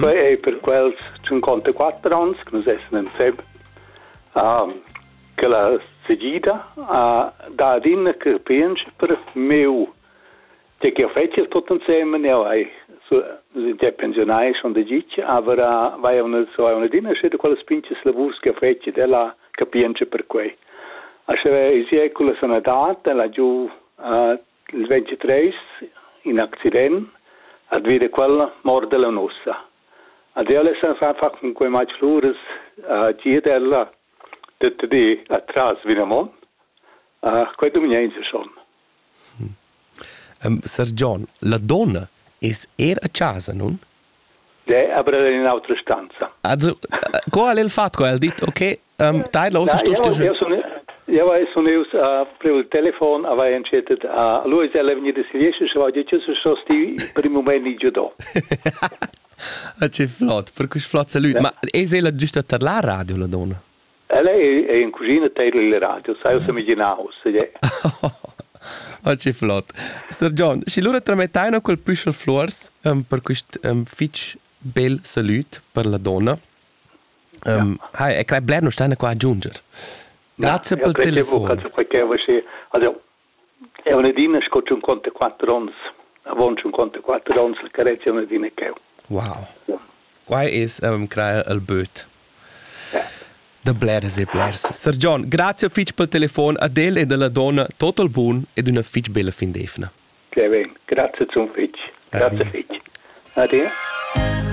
Quei ei per quels tschuncontaquatter onns che nus essan en Sep che la segida ha dat adina capientscha per miu tgei ch'jeu fetschel tut ensemen. Jau hai già pensionai schon da gitg, aber vai jau adina schi da quellas pintas lavurs che fetschet ella capientscha per quei. Aschia ei sia culla sanadad, ella giu Il ventitreis, in accident, at veda quella morda la nussa. Ad ella san fa far cun quei matg luras a giet ella tut di atras vinamon. Uh, quei dumienza schon. Um, Sar John, la donna es er a casa, nun? De aber in autra stanza. Also, co ha el fatto? El dit, okay, um, dai los, sto sto. Ja, weil so neus a preu telefon aber entschettet a lui ist er venido si riesce se voglio che se so sti per il momento di giudo. Ah, che flott, per cui flott salut. Ma è la giusta per la radio la donna? Ella è in cuschina teidla il radio, sai o semiginau, se Oh, che flott. Sir John, și lura tramettai no col Püschel Flors um, per quist um, fitch bel salut per la donna. Um, ja. Hai, e crei bler non steina qua a giunger. Grazie ja, per il telefon. Grazie per qualche voce. Also, Eu n'he adina sco tschunconta quatter ons, avon tschunconta quatter ons la carezia n'he adina ch'eu. Wow. Quai es ehm crair il böt. Da bleras e blers. Sir John, grazie fich pel telefon ad el e dalla donna total bun ed üna fich bella fin d'eivna. Che ben, grazie zum fich. Grazie fich. Ade.